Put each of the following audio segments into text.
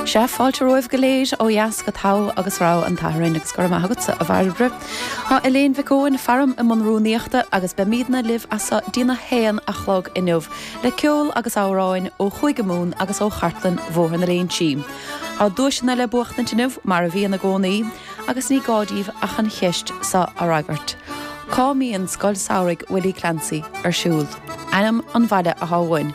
Sea, fáilte romhaibh go léir ó dheas go Togha agus Rogha an tSathairn agus go raibh maith agatsa, a Bhairbre. Tá Elaine Mhic Eoin faram i mbun rúnaíochta agus beimidne libh as seo dtí'n a haon a chlog inniu le ceol agus amhráin ó Chúige Mumhan agus ó chartlann Bhóthar na Léinsí. Tá duaiseanna le buachtaint inniu mar a bhíonn i gcónaí agus ní gá díbh ach an cheist seo a fhreagairt, Cá mbíonn Scoil Samhraidh Willie Clancy ar siúl? Ainm an bhaile atá uainn.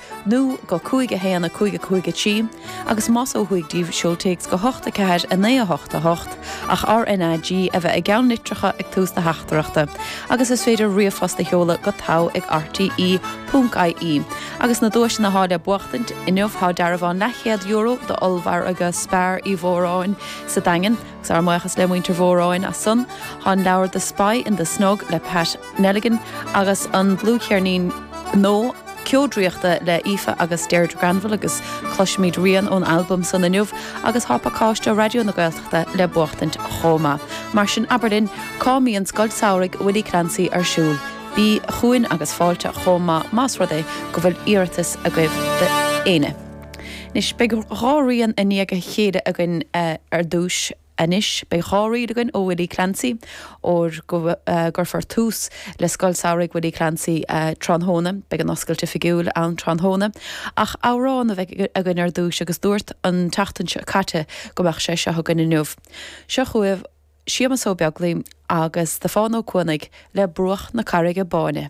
nó go 5 1 5 5 3 agus más ó thuaidh díbh seol téacs go 8 4 9 8 8 ach RNAG a bheith i gceann litreacha ag tús na teachtaireachta agus is féidir ríomhphost a sheoladh go tar ag RTÉ.ie Agus na duaiseanna atá le buachtaint inniu thá dearbhán leathchéad euro do ollmhargadh Spar Uí Mhóráin sa Daingean agus ár mbuíochas le muintir Mhóráin as san Thá an leabhar The Spy in the Snog le Pat Nelligan, agus an dlúthcheirnín nua Ceo Draíochta le hAoife agus Deirdre Granville agus cloisfimid rian ón albam san inniu agus tá pacáiste Raidió na Gaeltachta le buachtaint chomh maith. Mar sin abair linn, cá mbíonn Scoil Samhraidh Willie Clancy ar siúl? Bíg chugainn agus fáilte chomh maith más rud é go bhfuil iarratas agaibh d'aoinne! Anois beidh dhá rian i ndiaidh a chéile againn ar dtús. Anois beidh dhá ríl againn ó Willie Clancy ar go gcuirfear tús le Scoil Samhraidh Willie Clancy tráthnóna. Beidh an oscailt oifigiúil ann tráthnóna ach amhrán a bheidh againn ar dtús agus dúirt an tseachtain caite go mbeadh sé seo againn inniu. Seo chugaibh Séamus Ó Beaglaoich agus Stiofán Ó Cuanaigh le Bruach na Carraige Báine.